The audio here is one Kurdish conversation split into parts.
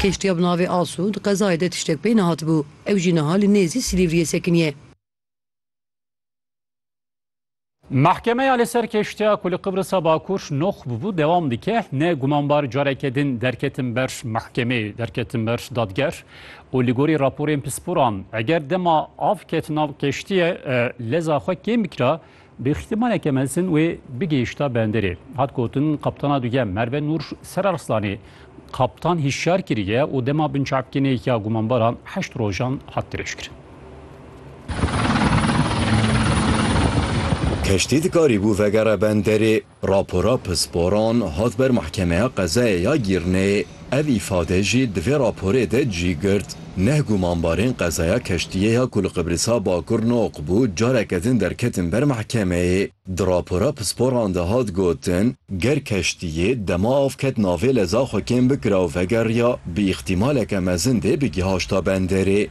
Kêştiya bi navê Asu di qezayê de tiştek pey nehatibû. Ew jî niha li nêzî Silîvriyê sekiniye. Mehkemeya li ser kêştiya ku li Qibrisa Bakur noq bûbû dewam dike. Ne gumanbar careke din derketin ber mehkemê, derketin ber dadger û li gorî raporên pisporan eger dema av ket nav kêştiyê leza xwe kêm bikira Bi îhtimaleke mezin wê bigihişta benderê. Hat gotin Kaptana duyem Merve Nur Serarslanê kaptan hişyar kiriye û dema binçavkirnê ya gumanbaran heşt rojan hat dirêjkirin. Keştî dikarîbû vegere benderê. Rapora pisporan hat ber Mehkemeya Qezayê ya Gîrnê. Ev îfade jî di vê raporê de cî girt. Neh gumanbarên qezaya keştiyê ya ku li Qibrisa Bakur noq bû careke din derketin ber mehkemeyê. Di rapora pisporan de hat gotin, ger keştiyê dema av ket navê leza xwe kêm bikira û vegeriya, bi îxtîmaleke mezin dê bigîhaşta benderê.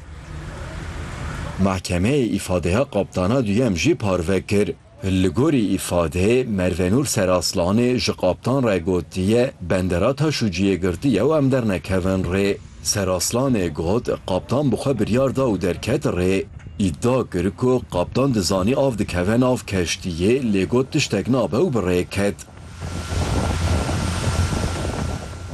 Mehkemeyê îfadeya kaptana duyem jî parve kir. Li gorî îfadeyê Mervenûr Seraslanê ji Kaptan re gotiye, Bendera Taşûciyê girtiye û em dernekevin rê. Seraslanê got, Kaptan bi xwe biryar da û derket rê. Îdia kir ku Kaptan dizanî av dikeve nav keştiyê lê got tiştek nabe û bi rê ket.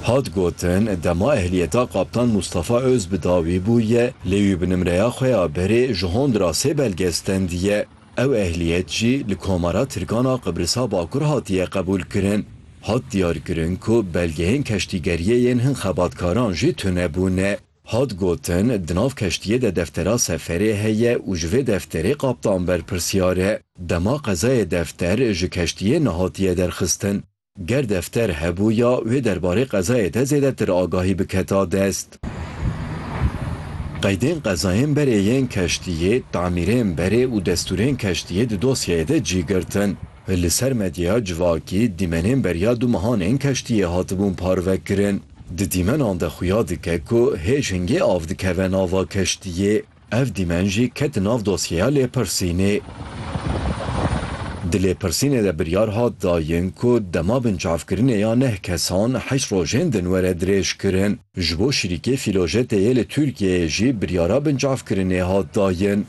Hat gotin, dema ehliyeta Kaptan Mustafa Ozbidawî bûye lê wî bi nimreya xwe ya berê ji Hondrasê belge stendiye. Ew ehliyet jî li Komara Tirkan a Qibrisa Bakur hatiye qebûlkirin. Hat diyarkirin ku belgeyên keştîgeriyê yên hin xebatkaran jî tune bûne. Hat gotin, di nav keştiyê de deftera seferê heye û ji vê defterê kaptan berpirsyar e. Dema qezayê defter ji keştiyê nehatiye derxistin. Ger defter hebû ya wê derbarê qezayê de zêdetir agahî biketa dest. Qeydên qezayên berê yên keştiyê, tamîrên berê û destûrên keştiyê di dosyeyê de cî girtin. Li ser medyaya civakî dîmenên beriya du mehan ên keştiyê hatibûn parvekirin. Di dîmenan de xuya dike ku hêj hingê av dikeve nava keştiyê. Ev dîmen jî ket nav dosyeya lêpirsînê. Di lêpirsînê de biryar hat dayin ku dema binçavkirinê ya neh kesan heşt rojên din were dirêjkirin. Ji bo şirîkê Filojet'ê yê li Tirkiyeyê jî biryara binçavkirinê hat dayin.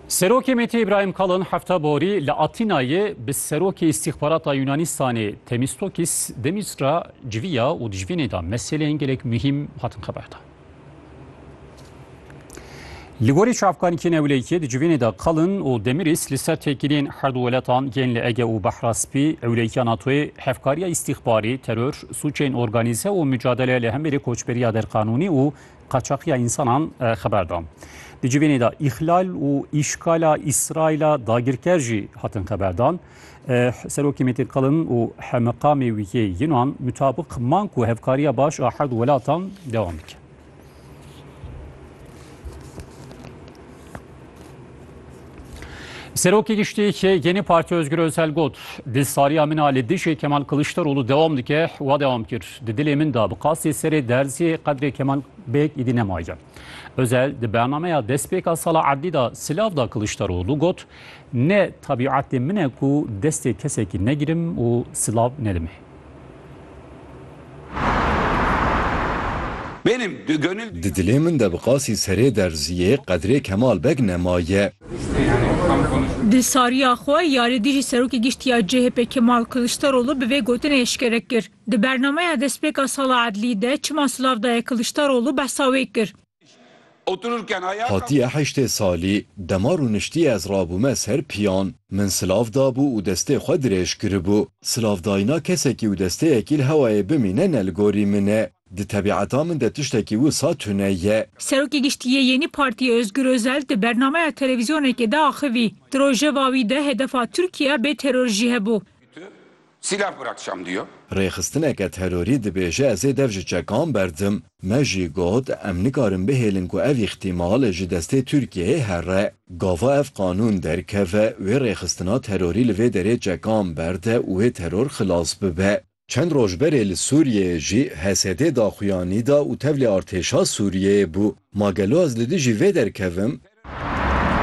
Serokê MHP'ê Îbrahîm Kalin hefta borî li Atînayê bi Serokê Îstîxbarata Yûnanîstanê Temîstokîs Demîstra civiya û di civînê de meseleyên gelek muhîm hatin xeberdan. Li gorî çavkanîkê newleyîkê di civînê de Kalin û Demîrîs li ser têkiliyên her du weletan yên li Ege û Behra Spî, ewleyîkiya NATO'yê, hevkariya îstîxbarî, teror, sûcên organîze û mucadele li hemberî koçberiya derqanûnî û qaçaxiya însanan xeber da. Di civênê de îxlal û îşkala Îsraîla dagirker jî hatin xeberdan. Serokê Mêtê Qilin û Hemmeqamê wî yê Yunan mutabiq man ku hevkariya baş a herd welatan dewam dike. Serokê Giştî yeni Partî Ozgur Ozel got, Di sariya min a li dijî Kemal Kilişterolû dewam dike, wa dewam kir, Di dilê min de bi qasî serê derzî qedrê Kemal Bêk îdî nemaye. Ozel di bernameya destpêka sala erdî de silav da Kilişterolû got, Ne tebîetê min e ku destê kesekî negirim û silav nedim ê. Di dilê min de bi qasî serê derziyê qedrê Kemal Beg nemaye. Di sariya xwe yarê dijî Serokê Giştî ya CHP'ê Kemal Kiliçdaroglu bi vê gotinê eşkere kir. Di bernameya destpêka sala edlî de çima silav daye Kiliçdaroglu behsa wê kir. Hatiye heştê salî, dema rûniştîye ez rabûme ser pîyan, min silav dabû û destê xwe dirêj kiribû. Silavdayîna kesekî û desteyekî li hewayê bimîne ne li gorî min e. Di tebîeta min de tiştekî wisa tune ye. Serokê Giştî yê Yenî Partîyê Ozgur Ozel di bernameya televîzyonekê de axivî, Di rojeva wî de hedefa Tirkîya bê teror jî hebû. Silah bırakcam diyor. Rêxistineke terorî dibêje ez ê dev ji çekan berdim. Me jî got em nikarin bihêlin ku ev îxtîmal ji destê Tirkiyeyê here. Gava ev qanûn derkeve, wê rêxistina terorî li vê derê çekan berde û wê teror xilas bibe. Çend roj berê li Sûriyeyê jî HSD daxuyanî da û tevlê artêşa Sûriyeyê bû. Ma gelo ez li dijî vê derkevim?